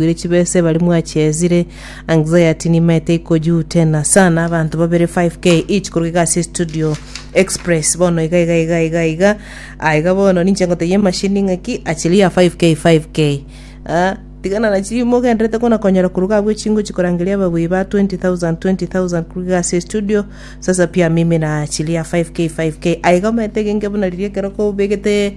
Mwaigwire chibesa ebari mwachezire anxiety nimaete ikojutena sana abanto babere 5k each koruga iga ase studio express bono iga iga iga iga iga Ah, iga bono ninche ngotebia emashini ng'aki achiria 5k 5k Ah, tigana na chirimo ogenderete kona konyora koruga abwo echingo chikorangeria ababoi ba 20000 20000 koruga iga ase studio sasa pia mimi na achiria 5k 5k aiga omaete genge buna riria ekero kobegete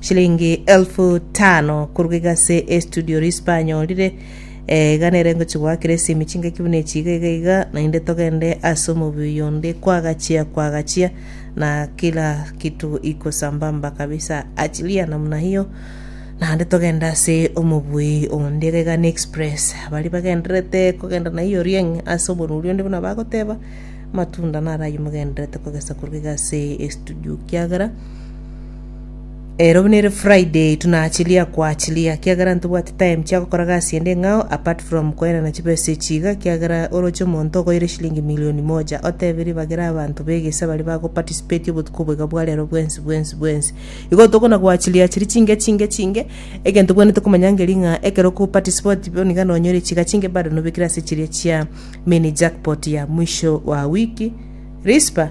Shilingi elfu tano korwa iga ase Estudio Rispa anyorire. Eh, iga nere ngochigwa kera esimi chingaki buna echi iga iga iga, naende togende ase omobuya onde kwagachia kwagachia na kila kitu iko sambamba kabisa. Achilia namna hiyo naende togende ase omobui onde iga iga n'express. Baria bagendererete kogenda na hiyo rieng' ase oboruri onde buna bagoteba, amatunda naro ayio mogendererete kogesa korwa iga ase Estudio kiagera Ero nere Friday tunachilia koachilia kiagera ntobwati time chia gokora gasi ende ng'ao apart from koenana chibesa echi iga kiagera oroche omonto ogoire shilingi milioni moja otebe ribagera abanto begesa baria bago participate obotuko obo iga bwa rero bwensi bwensi bwensi. Igo tokona goachilia chiri chinke chinke chinke egento bwenerete komanya ngeri ng'a ekero oko participate bono iga nonyore chiga chinke bado nobekire ase chiria chia mini jackpot ya mwisho wa wiki. Rispa.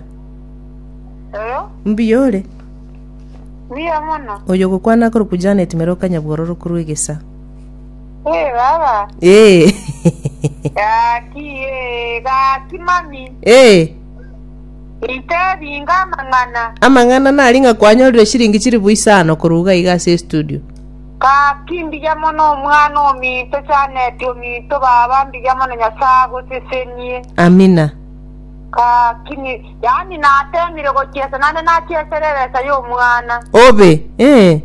Mbuya ore? Mbuya mono. Oyo gokwana akoro ku Janet mere okanyabworo rokuru egesa. Eh baba. Eh. Gaki eh gaki mami. Eh. Ite binga mang'ana. Amang'ana nari ng'a kwanyorire shiringi chiri buisano koruga iga ase studio. Gaki mbuya mono omwana ominto Janet ominto baba mbuya mono Nyasaye agosesenie. Amina. Gaki Yaani nateemire gochiesa naende nachiesera ebesa y'omwana. Obe, eh,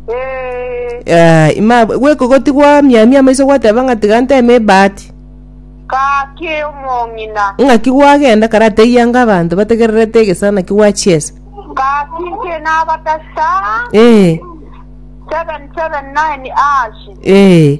Ee, ah, ima gwekogoti gwamiamia amaiso gwateba ng'a tiga nteme ebahati. gaki omong'ina. Ng'aki gwagenda karateyia anga abanto bategererete egesara naki gwachiesa. Gaki inche nabatasa Eh, 779 ashi. eh,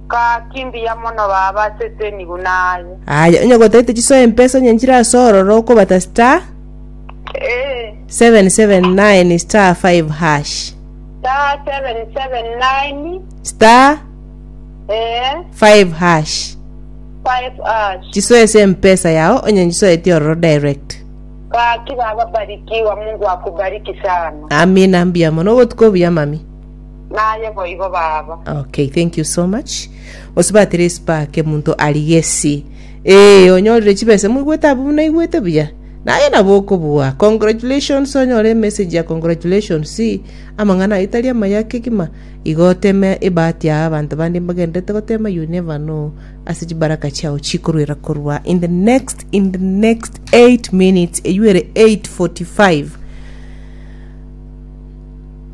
Gaki mbuya mono baba ase eteniguna aye. Aye onye gotaete chisoe empesa onye nchire ase ororo okobata star Ee. 779 star 5 hash Star 779. star Ee. 5 hash 5 ash. chisoe ase empesa yao onye nchisoetie ororo direct Gaki baba barikiwa Mungu akubariki sana. amina mbuya mono obotuko obuya mami Naye boigo baba. Okay, thank you so much. Gose batire espark omonto ari gesi. Eh, onyorire chibesa moigwete abwo naigwete buya. Naye nabo okobua. Congratulations onyore message ya congratulations. Amang'ana aye tari amaya kegima. Igo oteme ebahati ya abanto bande mbagenderete gotema you never know. Ase chibaraka chiao chikoruera korwa in the next in the next 8 minutes eyuere 8:45.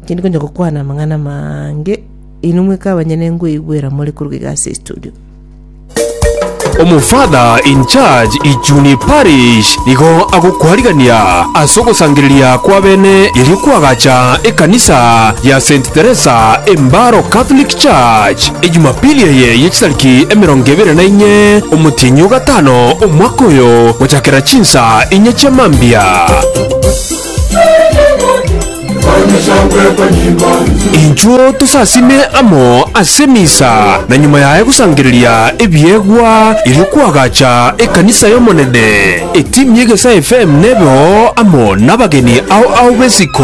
Tindi konya gokwana amang'ana amange, inwe mweka abanyene ngoigwera more koruga iga ase estudio. Omofather in charge Ijuni Parish nigo agokwarigania ase ogosangereria kw'abene erio kw'agacha ekanisa ya Saint Teresa Embaro Catholic Church e Jumapili eye ye chitariki emerongo ebere na inye omotienyi o gatano omwaka oyo gochakera chinsa inye chia mambia. Inchuo tosasime amo ase misa, na nyuma yaye gosangereria ebiegwa, erio kwagacha ekanisa y'Omonene. Etimu y'Egesae FM nebe oo amo nabageni ao ao b'esiko.